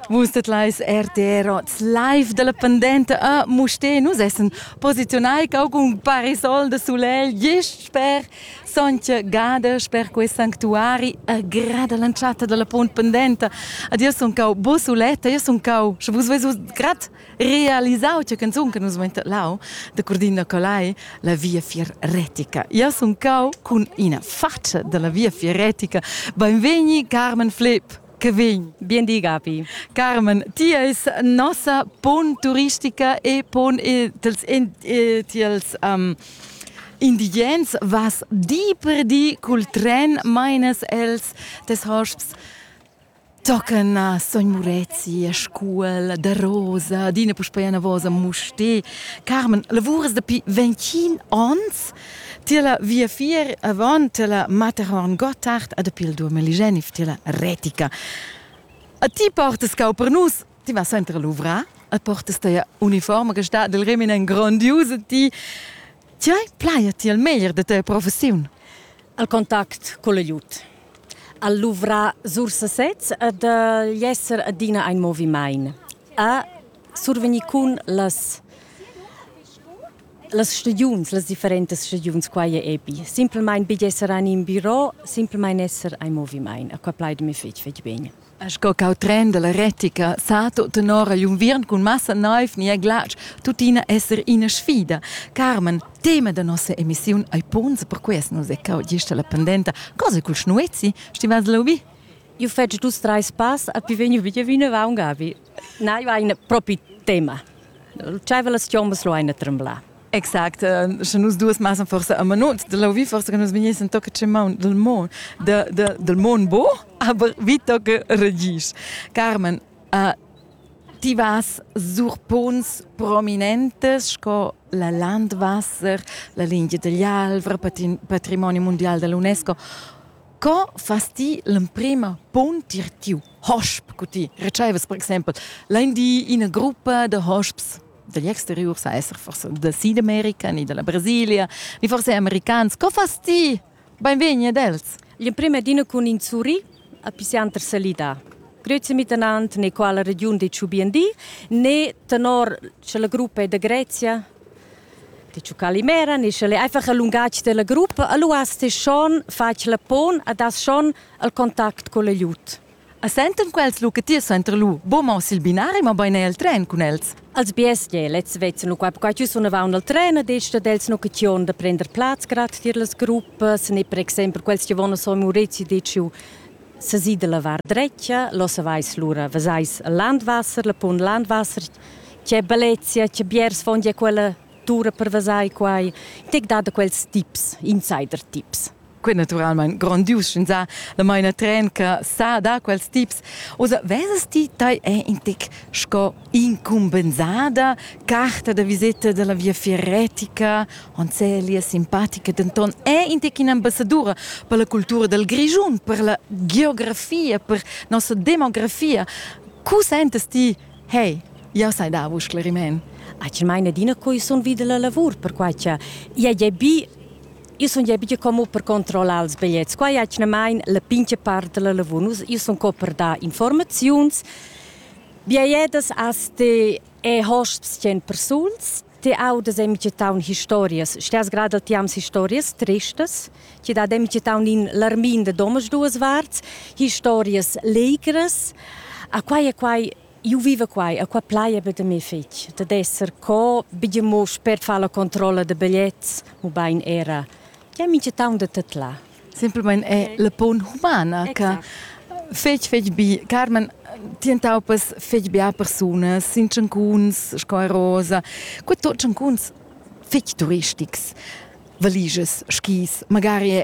Vus tetlais RTR live dalla pendenta a Muste. Nus essen posiziunai caucun parasol de soleil gest sper Sontga Gada, sper quei sanctuari agrada l'entschatta della pont pendenta. Ad io sun cau bo suletta, io sun cau, sche vus vesus grad realisau che canzun che nus lau da Cordina Colai la via fieretica. Io sun cau cun ina faccia della via fieretica. Benvegni Carmen Flip che vegn. Bien di Gabi. Carmen, ti eis nossa pon turistica e pon e tals in, e, tiels um, indigens vas di per di cul tren meines els tes hosps Tochen a sogn Murezi a scuol da Rosa, adina puspei anavos a Mustér. Carmen, lavurs dapi ventgin onns. Tier la viafier avon, tier la Matterhorn Gottard e dapi il duamiligenif tier la Retica. A ti portas cau per nus, ti vas center a luvrar e portas teia uniforma che stat dil remin en grondius a ti. Tgei plai ti il meglier da tia professiun? Al contact col aiut. Al luvrar sur sesez ed agl esser adina ein movimain. A survegnir cun las las stagiuns, las differentas stagiuns, quai è epi. Simplmain betg esser en in biro, simplmain esser ein movimain. A qua plaidami fitg, fitg bene. Sco cau tren dalla retica sa tut tenor agl unviern cun massa neiv ni glatsch tuttina esser ina sfida. Carmen, tema da nossa emissiun ei punts per quest nus e cau gista la pendenta. Cosa cul schnuezi? Stivas lobi? Io feci dus treis pass e pi vegnu via vinavant gavi. Na, io hai propi tema. C'aveva las chiombas lo ein a tremblar. Exact, sche nus duas massa forsa a manut, de lauvi forsa che nus vegnessen tocca ce maun del mon, de, de, del mon bo, aber vi tocca regis. Carmen, uh, ti vas sur punts prominentes sco la Landwasser, la linea dell'Alvra, patrimonio mondial dell'UNESCO. Co fas ti l'emprima punt tir tiu hosp cu ti? Recevas per exempel, lein di ina gruppa de hosps dagli exteriur sa esser forse da Südamerika, ni dalla Brasilia, ni forse americans. Co fas ti? Benvegni ad els. In prima dina cun in suri a Pisanter salida. Grezia Mittenant ne quala regiun de Ciubiendi, ne tenor la gruppa de Grezia de Ciucalimera, ne sche einfach a lungatg della gruppa, allo hast schon fac la pon ad has schon al contact con le liut. As sentan quels lucatiers suenter lur boma sil binari, mabain er el tren cun els. Als bestias e lezs vezzan lu qua quai sunavaun al tren ed ei stat els l'occasiun da prender plaz grad tier las gruppas ne per exempel quels che von a Son Maurizio deciu sesir da lavar dretga, lo savais lura, vesais Landwasser, la punt Landwasser, che bellezia, che biers von ja quella tura per vesar quai. Tec dada quels tips, insider tips. Quei naturalmein grondius sch'ins ha la maina tren che sa da quels tips. Osa vesas ti tai è in tec sco incumbensada carta da viseta dalla via fieretica, Onzelia simpatica, denton è in tec in'ambassadura per la cultura dal Grischun, per la geografia, per nossa demografia. Cu sentas ti, hey, jau sai dar vos scleriment? Acel meine Dina coi sun vida la lavur, perquai cha ia è bi Io sun ja bigia como per controllar ils bigliets. Qua è atgnamain la pincha part da la lavur. Nus io sun co per dar informaziuns. Biaiedas as ti e hosps 100 persuls. Ti audas en taun historias. Stias grada ti ams historias tristas. Ti dat en taun in larmin de domas duas varts. Historias legras. A quai e quai Io viva qua e qua plaia be da me figl, dad esser co bger mosch per far la controlla da bigliets, ubain era che mincha taun da tet là. Simplamain è la punt humana che fetg fetg bi. Carmen, ti entaupas fetg bia persunas, sin tschancuns sco Rosa. Quei tot tschancuns fetg turistics, valiges, skis, magari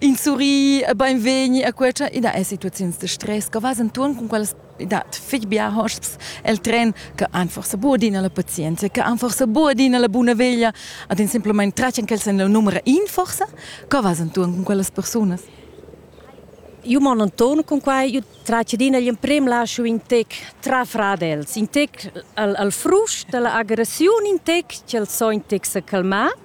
In surri beinvegni a quella i dat situaziuns de stress che vas enturn con quelles i dat fich bia hosps el tren che han forsa buca adina la pazienza, che han forsa buca adina la buna veglia ad in simplament tratgen ch'els han la numera in forsa, co vas enturn con quellas persunas? Io mon enturn con quai, io tratgedina gli emprem lascio in tec trafrar els, in tec al, al frust dalla agressiun, in tec ch'els so in tec se calmar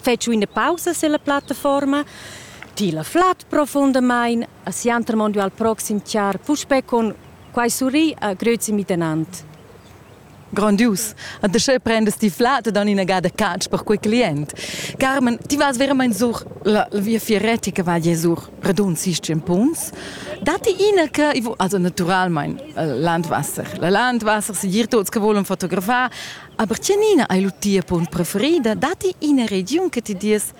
fetsch üna pausa silla plattaforma, tila flat profundamaing e siantermondi al proxim char puspè con quai surri a grüzi mitegnant. Grandius. A dasche prendas ti flat ed dann inagada catsch per quei client. Carmen, ti vas veramente sur la viafieret che va sur redund 16 punts. Dati ina che, also naturalmente, Landwasser. La Landwasser si dir tuts che volen fotografar, Aber Giannina hai lu tia punt preferida, datti ina regiun che ti dies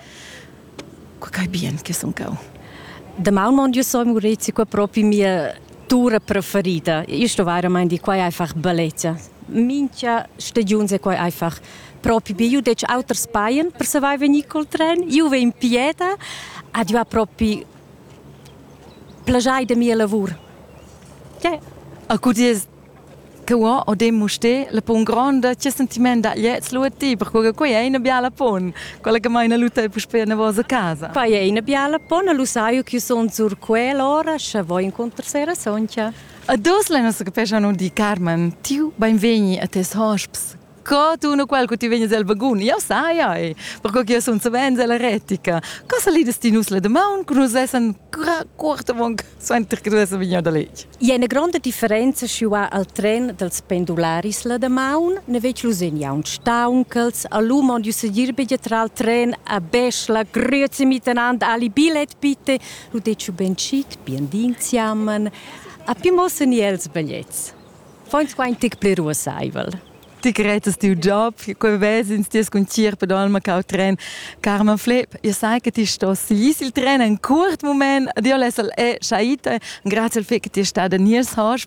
quai bien che sun cau. Daman mon io so Maurizio qua proprio mia tura preferida. Io sto veramente di qua è einfach bellezza. Mincha stagiuns è qua einfach proprio bi. Io dec auters paien per savai venir col tren. Io ve in Pieta ad io ha proprio plagiai de mia lavur. Yeah. A cu dies Tuo Odin Mustér la pon gronda che sentiment da gliez lu a ti, perquei che quei ei ina biala pon, quella che meina lu tei puspei navos a casa. Quei ei ina biala pon, lu sai che sun sur quell'ora, sche voi incontrar sera sontga. A dos la nostra capeschan di Carmen, tiu beinvegni a tes hosps. Co tu no quel che ti vegnes el vagun? Jau sai, ai, perco che io sun savens ella retica. Cosa lides ti nus la damaun che nus essan quarta monk suenter che tu essan vegniu da letg? I è una grande differenza schi va al tren dels pendularis la damaun, ne vec lusin jaun staunchels, a lu mond ju sedir be tra al tren a beschla, grüezi miteinander, ali bilet bitte, lu dec ben chic, bien dinziamen. A più mossen i els bigliettes. Fons qua in tic pli ruossaivel. Ti cretas tiu job, quei vesins ti cun tier pedalma cau tren. Carma Flep, io sai che ti stos gis il tren en curt moment. Dio lesel e shaite. Grazie al fait che ti è stada nies hosp.